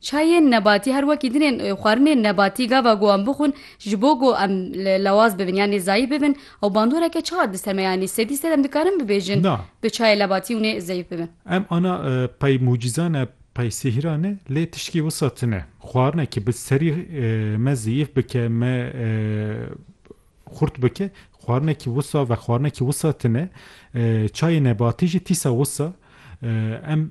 Çayên nebatî her wekî din ên xwarinên nebatî gava ku em bixwin ji bo ku em lewaz bibin yanî zayîf bibin ew bandoreke çawa dist heme yanî sedî sed em dikarin bibêjin Na. tu çayê lebatî hûnê zeyf bibin. Em ana pey mucîza ne pey sihra ne lê tiştî wisa tune xwarine ki bi serî me zeyîf bike me xurt bike xwarine ki wisa vexwarine ki wisa tune çayê nebatî jî tîsa wisa em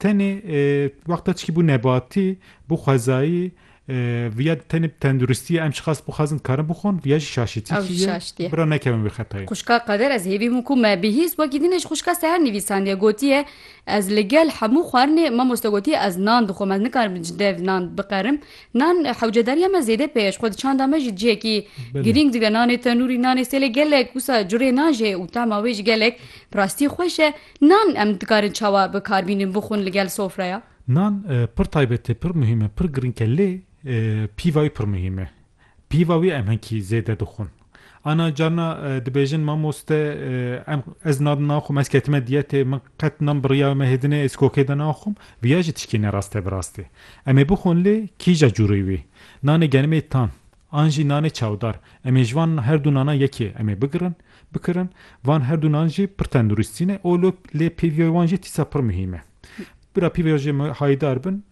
Tenê wexta çikî bû nebatî, bû xwezayî, viya di tenê bi tenduristî ye, em şixas bixwazin dikarin bixwin, viya jî şaşîtîkî ye, bira nekevin vê xetayê. Xwişka Qeder ez hêvî min ku me bihîst wekî din e ji xwişka Seher nivîsandiye, gotiye, Ez li gel hemû xwarinê mamoste gotiye ez nan dixwim, ez nikarim ji dev nan biqerim, nan hewcedariya me zêde pê ye, ji xwe di çanda me jî cihekî girîng dibe, nanê tenûrî, nanê sêlê gelek wisa curê nan jê û tema wê jî gelek bi rastî xweş e. Nan em dikarin çawa bikar bînin bixwin li gel sofreya? Nan pir taybet e, pir muhîm e, pir girîng e lê pîva wî pir muhîm e. Pîva wî em hinkî zêde dixwin. Ana carina dibêjin mamoste em ez nan naxwim, ez ketime diyetê, min qet nan biriyayo me hêdine ez kokê de naxwim, viya jî tişkî ne rast e bi rastî. Em ê bixwin lê kîja curî wî? Nanê genimê tan, An jî nanê çawdar. Em ê ji van her du nanan yekê em ê bigirin, bikirin. Van her du nan jî pir tenduristî ne û lo lê pêviyoy wan jî tîsa pir muhîm e. Bira pêviya jê me hayîdar bin.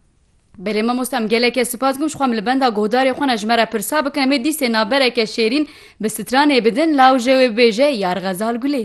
Belê mamosta em gelekê sipas dikim ji xwe em li benda guhdarê xwe ne ji me re pirsa bikin em ê dîsê nabereke şêrîn bi stranê bidin lawje wê bibêje Yar Xezal Gulê.